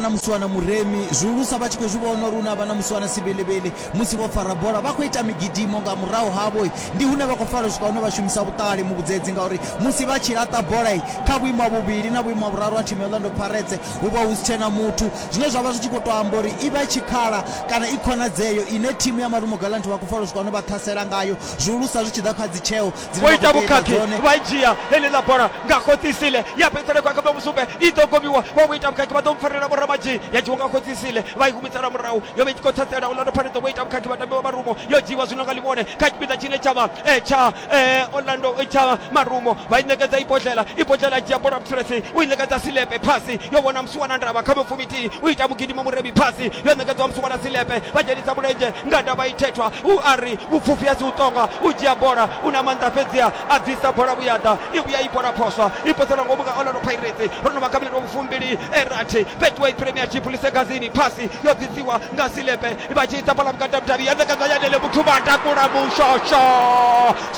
na musiwana muremi zwihulusa vha tshi khou zwi vhona uri hu na vha na musiwana sivhilivhili musi vho fara bola vha khou ita migidimo nga murahu havho ndi hune vha khou fara swika hune vha shumisa vhuṱali muvhudzedzi ngauri musi vha tshi laṱa bola kha vhuimo ha vhuvhili na vhuimo ha vhuraru ha thimu ya Orlando Pirates hu vha hu si tshena muthu zwine zwa vha zwi tshi khou tou amba uri i vha i tshikhala kana i khonadzeo ine thimu ya Marumo Gallants vha khou fara swika hune vha ṱhasela ngayo zwihulusa zwi tshi ḓa kha dzitsheo vho ita vhukhakhi vha dzhia heḽiḽa bola nga khotsisile ya fhedzisela khou akamba musumbe i ḓo gomiwa vha vho ita vhukhakhi vha ḓo mpfarela vhoramadzhi ya dzhiwa nga khotsisile vha i humisela murahu yo vha i tshi khou ṱhatsela orlando pirates vho ita vhukhakhi vha tambiwa marumo yo dzhiiwa zwino nga ḽivhone kha tshipiḓa tshine tsha vha eh, tsha eh, orlando eh, tsha marumo vha i ṋekedza ibodlela ibodlela dzhia bola mthulesi u i ṋekedza silepe phasi yo vhona musuwana ndavha kha mupfumithihi u ita mugidimo murebi phasi yo ṋekedzwa musuwana silepe vha dzhenisa mulenzhe Nga ndavha ithethwa, u a ri, Vhupfufhi a si u ṱonga, u dzhia bola, u na maanḓa fhedziha a bvisa bola vhuya ḓa, i vhuya i bola phoswa, i poselwa ngomu nga Orlando Pirates. Ro no vha kha milandu wa vhufumbili e rathi Betway Premiership, Ḽisegazini, Phasi yo ḓisiwa nga Silepe vha tshi isa bola vhukati ha vhudavhi ya ṋekedzwa Yanele Muthu vha takula mushosho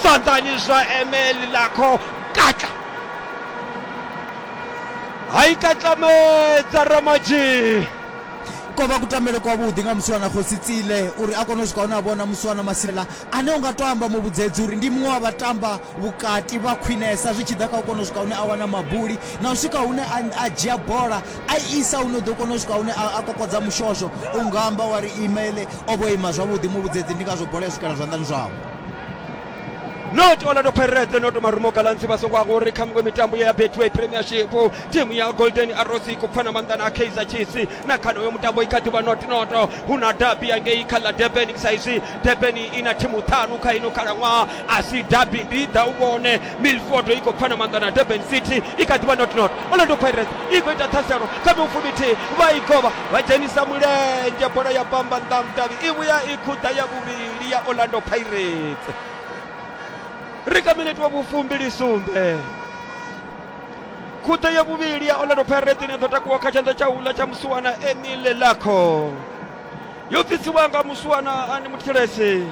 zwanḓani zwa Emeli Lakho Katla ha i katlamedza Ramadzhi. Ko vha kutambele kwavhuḓi nga musiwana khosi Tsile uri a kone u swika hune a vhona musiwana Masila ane u nga tou amba mu vhudzedzi uri ndi muṅwe wa vhatamba vhukati vha khwinesa zwi tshi ḓa kha u kona u swika hune a wana mabuli na u swika hune a dzhia bola a isa hune u ḓo kona u swika hune a kokodza mushosho u nga amba wa ri imele o vho ima zwavhuḓi mu vhudzedzi ndi ngazwo bola ya swikela zwanḓani zwavho. not orlando pirates not marumo galansi vha songo angori kha miṅwe mitambo ya betway premiership timu ya golden arrows i khou pfana maanḓa na kaizer chiefs na kha noyo mutambo i kha ḓivha not not hu na dabi yangei kha ḽa durban sa izwi durban i na thimu ṱhanu kha ino khalaṅwaha a si dabi ndi ḓa u vhone milford i khou pfana maanḓa na durban city i kha ḓivha not not orlando pirates i khou ita ṱhaselo kha miufumithihi vha i govha vha dzhenisa mulenzhe bola ya bamba nḓa mudavhi i vhuya i khuḓa ya vhuvhili ndi ya orlando pirates ri kha minete wa vhufumbili sumbe khuthe ya vhuvhili ya orlando pirates ine ḓo takuwa kha tshanḓa tsha uḽa tsha musuwana emile lakho yo bvisiwa nga musuwana ani muthilesi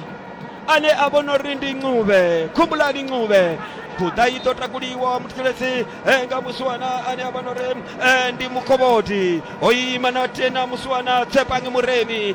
ane a vhona uri ndi ncube khumbulani ncube buḓa i ḓo takuliwa muthetshelesi eh, nga musuwana ane a vhona uri eh, ndi mukhovhodi o ima na tena musuwana tsepange muremi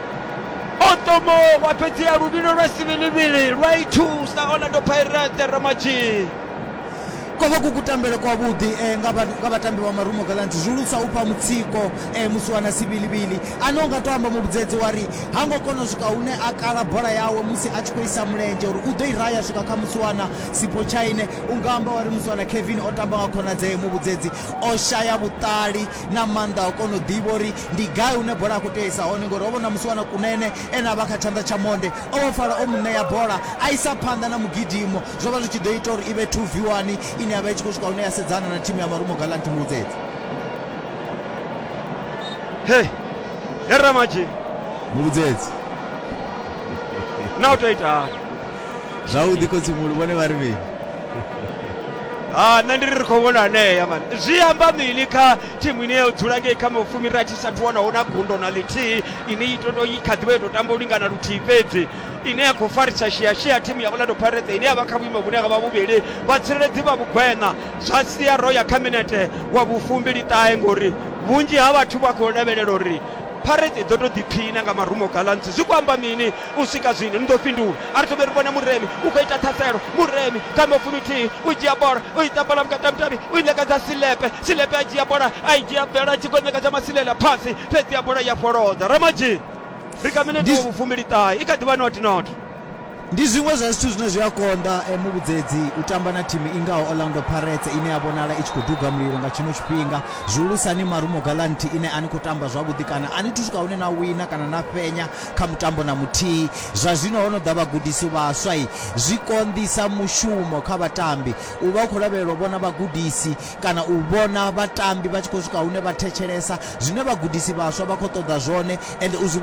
otomo wa fhedzea luvhilo lwa sivhilivhili lwa i thusa orlando pirate ramadzhii ko vha ku kutambele kwavhuḓi eh, nga vha- nga vhatambi vha marumo galant zwi lusa u fha mutsiko eh, musi wana sivhilivhili ane u nga to amba muvhudzedzi wa ri ha ngo kona u swika hune a kala bola yawe musi a tshi khou isa mulenzhe uri u ḓo i raya swika kha musi wana sipo tshaine u nga amba wa ri musi wana kevin o tamba nga khonadzee muvhudzedzi o shaya vhuṱali na maanḓa a u kona u ḓivha uri Ndi gai hune bola ya khou tea isa hone ngori ho vha na musiwana Kunene ene a vha kha tshanḓa tsha monde. O vhofhala o mu ṋea bola a isa phanḓa na mugidimo zwo vha zwi tshi ḓo ita uri i vhe 2 v 1 ine ya vha i tshi khou swika hune ya sedzana na thimu ya Marumo Gallant Mbudzedzi. Hey, he Ramaji. Muvhudzedzi. Na u tou ita hani? Zwavhuḓi Khotsimulu vhone vha ri mini? Ha, nṋe ndi ri ri khou vhona hanea man. Zwi amba mini kha thimu ine ya dzula ngei kha mafumi rathi sa thu wanaho na gundo na ḽithihi ine i toto i kha ḓivha i to tamba u lingana luthihi fhedzi ine ya khou farisa shiashia thimu ya orlando pirates ine ya vha kha vhuimo vhune ha vha vhuvhili vhatsireledzi vha vhugweṋa zwa sia ro ya kha minete wa vhufumbili ṱahe ngori vhunzhi ha vhathu vha khou lavhelela uri pirates i ḓo to ḓiphiṋa nga marumo galantsi zwi khou amba mini u swika zwino ni ḓo fhindula a ri thomeri vhona muremi u khou ita ṱhaselo muremi kha amba fuminthihi u dzhia bola u i ṱambala vhukati ha mutavhi u i ṋekedza silepe silepe a dzhia bola a i dzhia bvela a tshi khou ṋekedza masilela phasi fhedzi ya bola ya fholodza ramadzhini ri kha minete wa vhufumbiliṱahe i kha ḓivha not not ndi zwiṅwe zwa zwithu zwine zwi a konḓa eh, muvhudzedzi u tamba na thimu i ngaho orlando parets ine ya vhonala i tshi khou duga mulilo nga tshino tshifhinga zwihulusani marumo galanti ine a ni khou tamba zwavhuḓi kana a ni thu swika hune na wina kana na fhenya Kha mutambo na muthihi, zwa zwino ho no ḓa vhagudisi vhaswa. Zwi konḓisa mushumo kha vhatambi. U vha u khou lavhelela u vhona vhagudisi kana u vhona vhatambi vha tshi khou swika hune vha thetshelesa zwine vhagudisi vhaswa vha khou ṱoḓa zwone ende u zwi